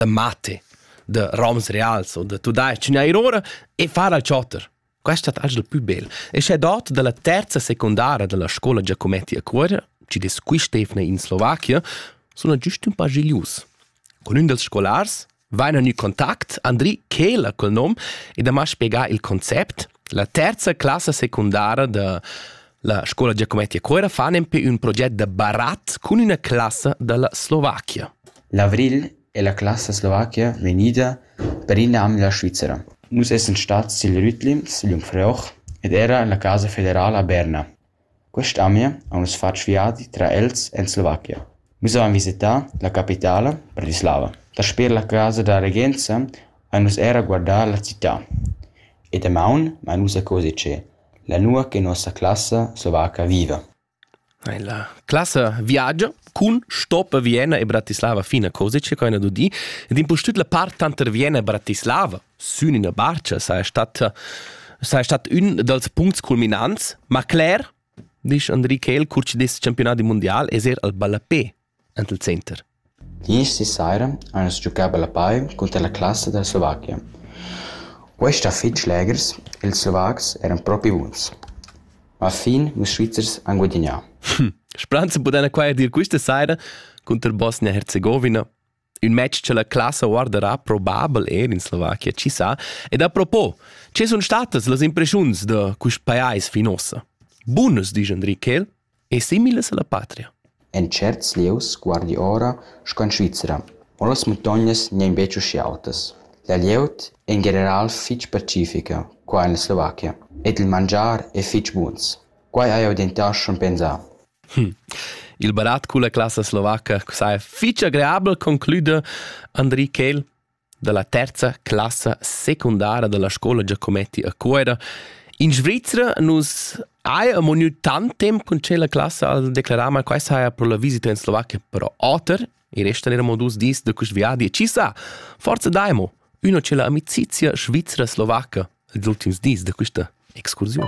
da mate de roms reals o de tudais neir ora e far al chotter questa è la più bella e c'è dot della terza secondara della scuola Giacometti a Cuore ci des qui Stefne in Slovacchia sono giusto un po' gilius con un dels scolars vaina nu contact Andri Kehler col nom e da ma spiegar il concept La terza classa secundara da la scola Giacometti a Cuera fan empè ün proget da barat cun üna classa da la Slovachia. L'avril è la classa slovachia vegnida per in anno dalla Svizzera. Nus essan stats sil Rütlim, sil Jungfrauch ed era en la casa federala a Berna. Quest'amia ha nus fatg viadi tra els en Slovachia. Nus havein visitau la capitala Bratislava. Dasper la casa da regenza ein nus era guardau la cità. E damaun mein nus a coser tschè, là nua che nossa classa slovaca viva. La classa viagia cun stop a Vienna e Bratislava fina Kosice, co hai dudì, ed impustüt la part tanter Vienna e Bratislava sün üna barcha saja stat saja stat ün dals puncts culminants, ma cler, disch Andrique El, cur chi dess championat di mundial, es er al ballapé ant il center. Isti saira ans giocà ballapai cunter la classa da Slovachia. Quest ha fich legers, ils Slovacs eran propi buns. Ma fin ils Svizzers han guadagnà. Spranze pudana qua dir questa saira contro Bosnia-Herzegovina Ün match cha la classa guardarà probabel eir in Slovakia, chi sa. Ed a propos, che sun statas las impreschiuns da quist pajais fin uossa? Bunas, disch Enriquel, e similas alla patria. En certs lieus guardi ora sco in Svizzera, ma las muntognas n'èn betg uschè autas. La glieud è in general fitg pacifica qua en la Slovakia ed il mangiar è fitg buns. Quai hai jau dentar schon pensà. Hm. Il barat culla classa slovaca saja fich agreabel, conclüda Andri Kehl dalla terza classa secundara dalla scola Giacometti a Cuera. In Svizzera nus haja amo gnü tant temp con tschella classa al declarar, ma questa haja pro la visita in Slovakia però oter. I restan eramo dus dis da quist viadi e ci sa, forse daimo üna c'è la amicizia svizzera-slovaca els ultims dis da quista excursiun.